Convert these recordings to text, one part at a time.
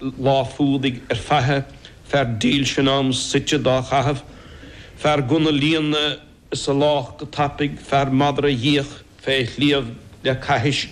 lá fuadaigh ar faiche, fear dílse in am suite dá chaitheamh, fear gunna a líonadh is a lámhach go tapaidh, fear madra a dh'fhiach fé shliabh le caithis,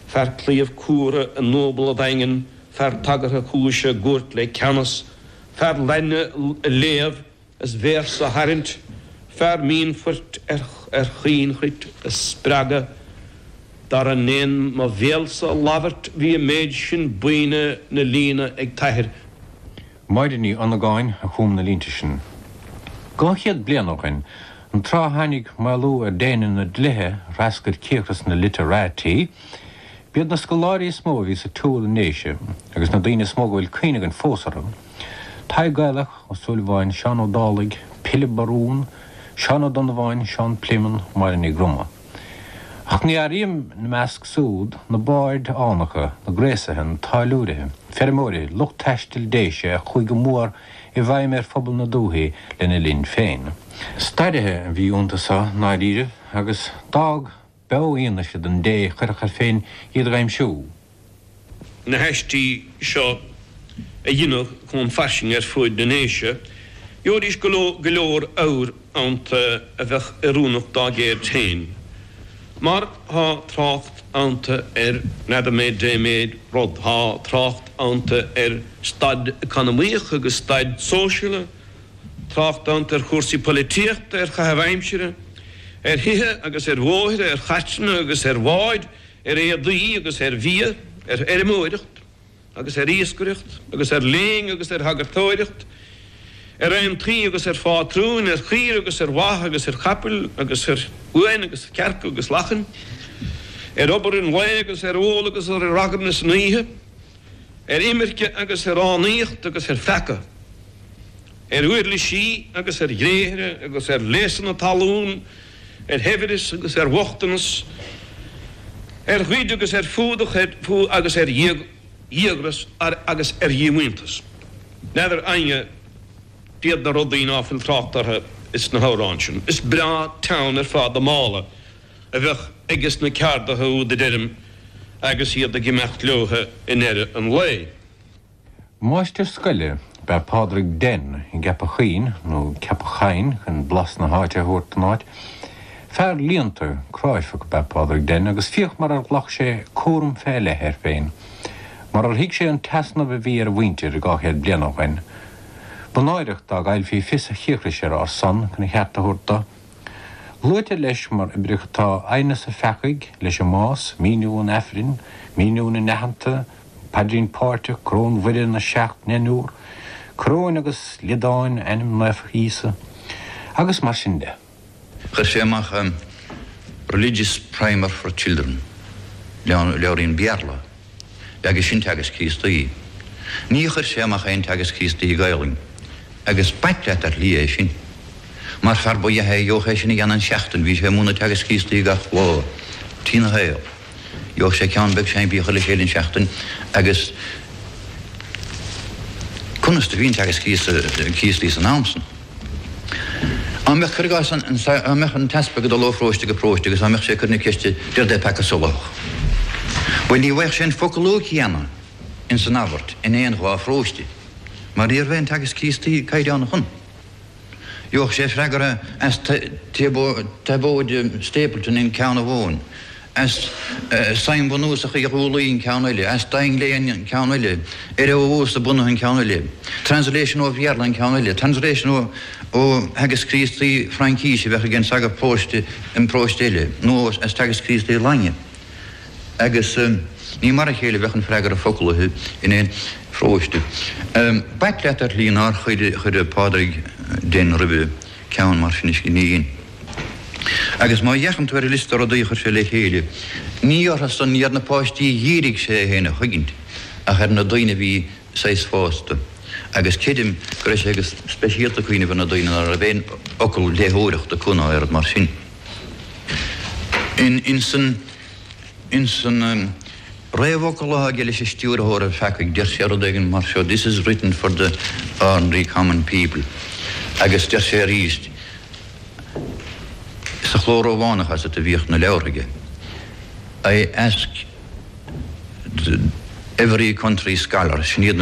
fear claíomh cumhra i ndúbla daingean, fear tagartha cúise i gcúirt le ceannas, fear Laidne a léamh. Is véarsa a tharraingt fear mínphoirt ar chaoinchruit a spreagadh dar a ndéan mo bhéalsa a labhairt bhí an méid sin buíne 'na líonadh ag t'athair. Máire Ní Dhonnagáin a chum na línte sin. Dhá chéad bliain ó shin, an tráth a tháinig maolú ar déine na dlíthe a threascair cíocras na literati, b'iad na scoláirí is mó a bhí sa tsiúl i nDéise agus na daoine is mó go bhfuil cuimhne againn fós orthu. Tadhg Gaelach Ó Súilleabháin, Seán Ó Dálaigh, Pilib Barún, Seán Ó Donnabháin, Seán Pléimeann, Máire Ní Dhroma. Ach ní áirím ina measc súd na baird fhánacha, na gréasaithe, na táilliúirithe, feirmeoirithe, lucht taistil Déise a chuaigh go mór i bhfeidhm ar phobal na dúthaí lena linn féin. Stairithe a bhí iontusan i ndáiríribh agus d'fhág. Beo fhianaise don té a chuirfeadh air féin iad a dh'aimsiú. na haistí seo a dheineadh chomh fairsing ar fuaid na nDéise, gheobhaidís go leor abhair ionta a bheadh oiriúnach dá gceird féin, mar thá trácht ionta ar n'fheadar mé dé méid rud, thá trácht ionta ar staid eacnamaíoch agus staid sóisialta, Trácht ionta ar chúrsaí polaitíochta, ar chaitheamh aimsire, ar thithe agus ar bhóithre, ar chairteanna agus ar bháid, ar éadaí agus ar bhia, ar fheirmeoireacht agus ar iascaireacht agus ar léann agus ar shagartóireacht, ar aontaí agus ar phátrúin, ar chaoire agus ar bha agus ar chapaill agus ar uain agus cearca agus lachain, ar obair an lae agus ar ól agus ar ragairne san oíche. ar imirce agus ar fhánaíocht agus ar pheaca, ar uirlisí agus ar ghréithre agus ar léasanna talún, ar shaibhreas agus ar bhochtanas, ar ghoid agus ar fuadach agus ar dhíogras agus ar dhíomhaointeas. N'fheadar éinne cad iad na rudaí ná fuil trácht orthu sna hamhráin sin. Is breá teann ar fad an mála. a bheadh aige sna ceardaithe úd a deirim agus iad ag imeacht leotha i ndeireadh an lae. Máistir scoile ab ea Pádraig Denn i gCeapach Choinn, nó Ceapach Chainn chun blas na háite a thabhairt don áit. Fear léannta, cráifeach ab ea Pádraig Denn agus féach mar ar ghlac sé cúram fé leith air féin, mar ar thuig sé an t-easnamh a bhí ar a mhuintir dhá chéad bliain ó shoin. Ba náireach dá gcaillfí fios a chíocrais ar ár son chun a cheart a thabhairt do. Luaitear leis mar oibreacha atá Aighneas an Pheacaigh leis an mbás, míniú an Aifrinn, míniú na n-aitheanta, paidrín páirteach, coróin Mhuire, na seacht ndeichniúr, coróin agus liodáin, ainm naofa Íosa, agus mar sin de. Chuir sé amach Religious Primer for Children, leabhairín Béarla. agus sin Teagasc Críostaí. Ní chuir sé amach aon Teagasc Críostaí Gaelainn. Agus b'ait leat ar shlí é sin. Mar fear ba dh'ea é a gheobhadh é sin a dhéanamh in seachtain bhí sé ag múineadh Teagasc Críostaí gach lá trína shaol. Gheobhadh sé ceann beag simplí a chur le chéile in seachtain agus conas do bhí an Teagasc Críostaí san am san? Á mbeadh, cuir i gcás, á mbeadh an t-easpag ag dul ó pharóiste go paróiste agus á mbeadh sé ag cur na ceiste 'Dé rud é peaca solathach? bhuel ní bheadh sé an foclú céanna in san abairt in aon dhá pharóiste mar ní raibh aon Teagasc Críostaí caighdeánach ann. Gheobhadh sé freagra as Tiobóid Stapleton in ceann amháin, as Suim Bhunúsach Uí Dhúlaí in ceann eile, as Donlevy in ceann eile, ar a bhunús bunaithe in ceann eile, translation ó Bhéarla in ceann eile, translation ó theagasc Críostaí Fraincise a bheadh ag an sagart paróiste in paróiste eile, nó as teagasc Críostaí Laidine. Agus ní mar a chéile a bheadh an freagra foclaithe in aon pharóiste. B'ait leat ar shlí nár chuir Pádraig Denn roimhe ceann mar sin a scríobh. Agus má fhéachann tú ar an liosta rudaí a chuir sé le chéile, ní orthusan ar na páistí a dhírigh sé é féin a chuigint ach ar na daoine a bhí saghas fásta. Agus creidim go raibh sé go speisialta ag cuimhneamh ar na daoine ná raibh aon fhocal léitheoireachta acu ná oiread mar sin. In san. Ins an réamhfhocal atá aige leis an Stiúrthóir an Pheacaigh, deir sé rud éigin mar seo, This is written for the ordinary common people. Agus deir sé arís sa chló Rómhánach is ea a bhíodh na leabhartha aige, I ask every country scholar, sin iad na.